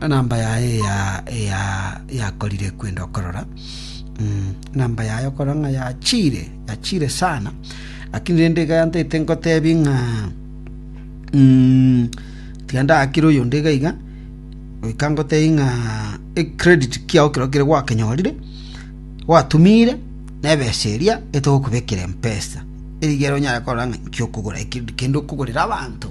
enamba yaye yakorire kwenda okorora enamba yaye okorora ng'a yachire yachire sana lakini rende iga yantete ngotebie ng'a tiga ndakire oyonde iga iga goika ngotebie ng'a ecredit kiao ekero kere gwakenyorire gwatumire na ebesa eria etogokobekera mpesa erigere onyare korora ng'a inki okogora kende okogorera abanto.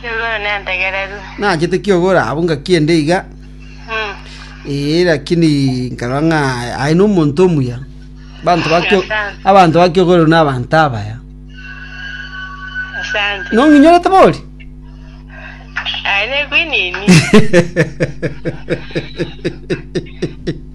Kiogoro nentegererwe. Naachete kiogoro abwo ngakienda iga. Ee, lakini nkarora ng'a aye nomonto omuya. Abanto ba kio- Asante. abanto ba kiogoro na abanto abaya. Asante. Nong'inyorete bori? Aye nekwinini.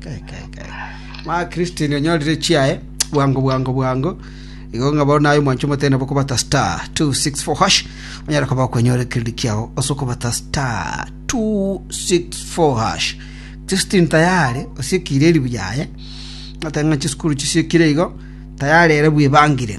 Kai, kai, kai. Ma Christine onyorire chiaye bwango bwango bwango. Igo ng'a bono naye omwancho omote nabo kobata star 264 hash. Onyara koba okwenyore kiriri kiao ase okobata star 264 hash. Christine tayari osiekire eribu yaye. Ng'ata ng'a chisukuru chisiekire igo tayari ere bwebangire.